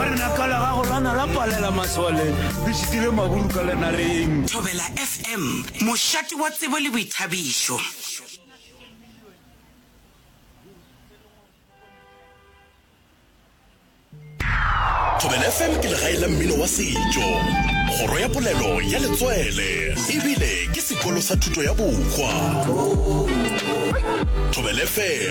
Lenaka la gago la na la palela masole le šitile maburu ka lenareng. Thobela FM, mošate wa tsebo le boithabišo. Thobela FM ke legae la mmino wa setšo, kgoro ya polelo ya letswele e bile ke sekolo sa thuto ya bohwa. Thobela FM.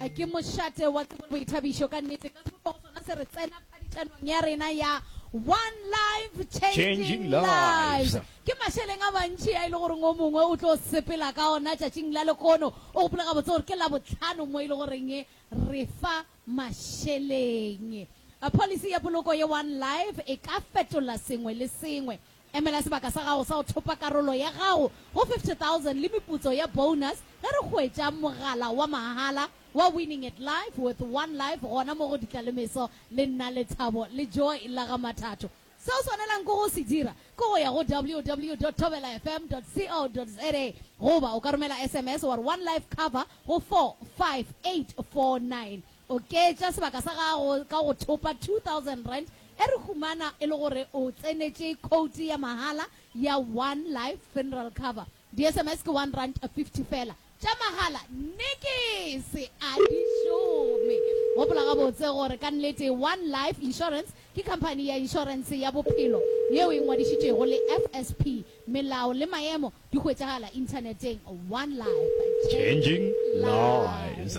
A ke mošate wa tsebo le boithabišo ka nnete ka sepogo sona se re tsena phadišanong ya rena ya One Life Changing Lives. Ke mašeleng a mantši a e le goreng o mongwe o tlo sepela ka ona tšatšing la lekono. O gopola gabotse gore ke Labohlano mo e le goreng re fa mašeleng. Policy ya poloko ye One Life e ka fetola sengwe le sengwe. Emela sebaka sa gago sa go thopa karolo ya gago go 50,000 le meputso ya bonus ge re hwetša mogala wa mahala wa Winning at Life with One Life gona mo go Ditlalemeso le Nna Lethabo le Joy la ga Mathato. Se o swanelang ke go se dira ke go ya go www.thobelafm.co.za goba o ka romela sms wa re One Life Cover go 45849. Oketša sebaka sa gago ka go thopa R2000 e re humana e le gore o tsenetše khoutu ya mahala ya One Life Funeral Cover. Di-SMS ke R1.50 feela, tša mahala, nikisi a di šome. Gopola gabotse gore ka nnete One Life Insurance ke khamphani ya inšorense ya bophelo yeo e ngwadišitšwego le FSP. Melao le maemo di hwetšagala inthaneteng. One Life, Changing Lives.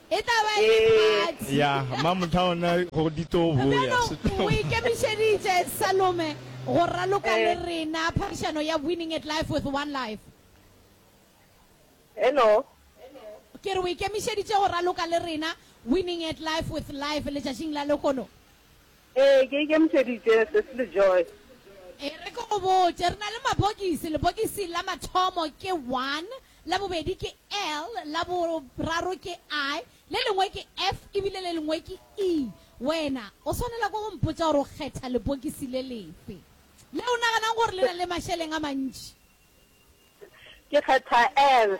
E tla ba e le party. Ya, Mamothaona go ditobo, ya, setobo. O ikemišeditše, Salome, go raloka le rena phadišano ya Winning at Life with One Life. Hello. Ke re o ikemišeditše go raloka le rena Winning at Life with Life letšatšing la lehono? Ee, ke ikemišeditše, Sesi Lejoy. E re ke go botše, re na le mabokisi, lebokisi la mathomo ke one, la bobedi ke L, la boraro ke I, le lengwe ke F e bile le lengwe ke E. Wena o swanela ke go mpotša gore o kgetha lebokisi le lefe le o naganang gore le na le mašeleng a mantši. Ke kgetha L.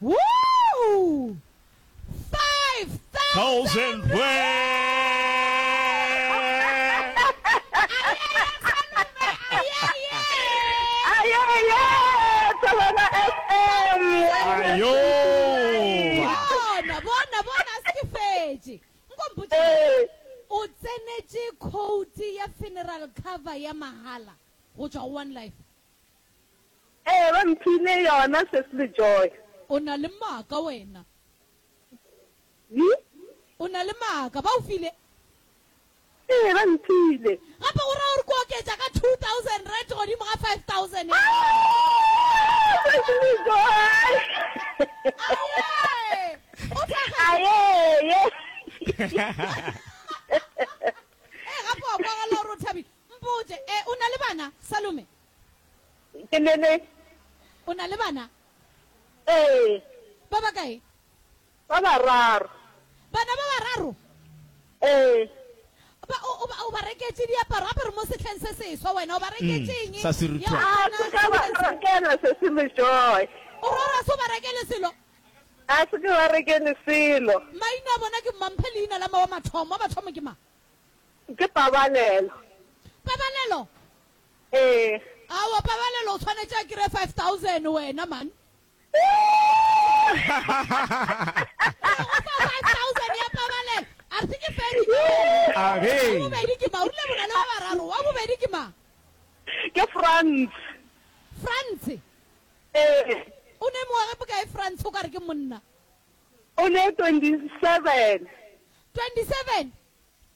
Woo! Five thousand O tsenetše quote ya funeral cover ya mahala go tšwa go One Life. Ee, ba mphile yona, Sesi le Joy. O na le maaka wena. Yi? O na le maaka. Ba o file? Ee, ba mphile. Gape go ra gore ke oketša ka two thousand rand godimo ga five thousand ya Aoh! Sesi le Joy! Ayee! O tlagetse? Ayee! Ee, gape wa kwagala gore o thabile. Mpotše, ee, o na le bana, Salome? Ke ne le. O na le bana? Ee. Ba ba kae? Ba bararo. Bana ba bararo? Ee. Ba, o, o, ba, o ba reketše diaparo, gape re mo sehleng se seswa, wena o ba reketše eng? Sa se rutwa. Ya, A se ka ba Christmas. rekela se se le joy. O re o ra se o ba rekele selo? A se ke ba rekele selo. Maina a bona ke mma? Mphe leina la mma wa mathomo. Wa mathomo ke mang? Ke Pabalelo. Pabalelo? Ee. Aowa pabalelo o tshwanetše a kire five thousand wena man. Ee go fa five thousand ya pabalelo a re se ke fedi ka wena. A re. Wa bobedi ke ma o rile bona le wa bararo wa bobedi ke ma. Ke Frans. Frans. Ee. O ne mengwage bokae Frans o ka re ke monna. O ne twenty seven. Twenty seven.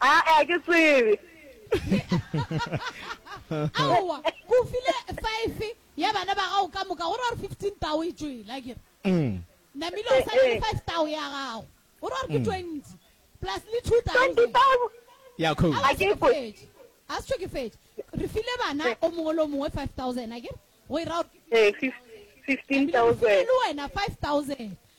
Aa, ke tsebe. Aowa, ke o file five ya bana ba gago ka moka, go ra gore fifteen tao e tšwele, a kere? Namile o sa na le five tao ya gago, go ra gore ke twenty, plus le two thousand. Twenty thousand? Ya, Khou. Aowa, se ke fetše. A se tšho ke fetše. Re file bana o mongwe le o mongwe five thousand, a kere? Go e ra gore ke fifteen thousand. Namile, re file le wena five thousand.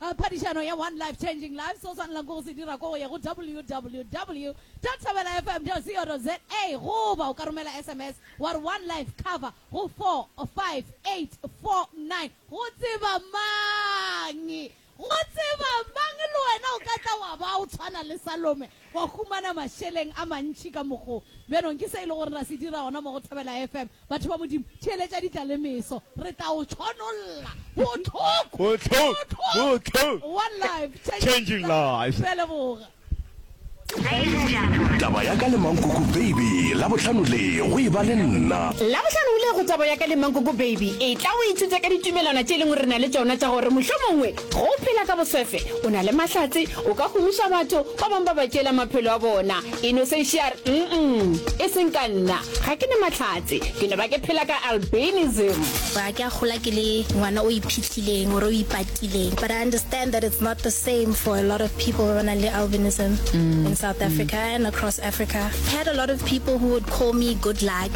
A Phadišano ya One Life Changing Lives, se o swanelago ke go se dira ke go ya go www dot thobelafm dot co dot za goba o ka romela sms wa re One Life Cover go 45849. Go tseba mang? Go tseba mang? Le wena o ka tla wa ba o tshwana le Salome. Wa humana mašeleng a mantši ka mokgo. Bjanong, ke se e le gore ra se dira gona mo go Thobela FM, batho ba Modimo, theeletša ditla le meso. Re tla o tšhonolla. Bohloko! Bohloko! One life, changing lives. Re a leboga. Taba ya ka le Mankoko Baby Labohlano le go e ba le nna. Labohlano le go Taba ya ka le Mankoko Baby e tla o ithuta ka ditumelwana tše e leng gore re na le tšona tša gore mohlomongwe go phela ka boswefe o na le mahlatse O ka gomiša batho ba bangwe ba ba tšeela maphelo a bona. E no sešo ya re, Nnm, e seng ka nna. Ga ke ne mahlatse. Ke no ba ke phela ka albinism. Ba ke a gola ke le ngwana o iphihlileng or o ipatileng. But I understand that it's not the same for a lot of people ba ba nang le albinism in South Africa and across Africa. I had a lot of people who would call me good luck.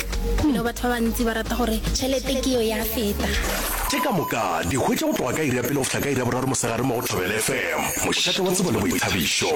You know, batho ba bantsi ba rata gore tšhelete ke yo ya feta. Tše ka moka di hwetša go tloga ka iri ya pele go fihla ka iri ya boraro mosegare mo go Thobela FM, mošate wa tsebo le boithabišo.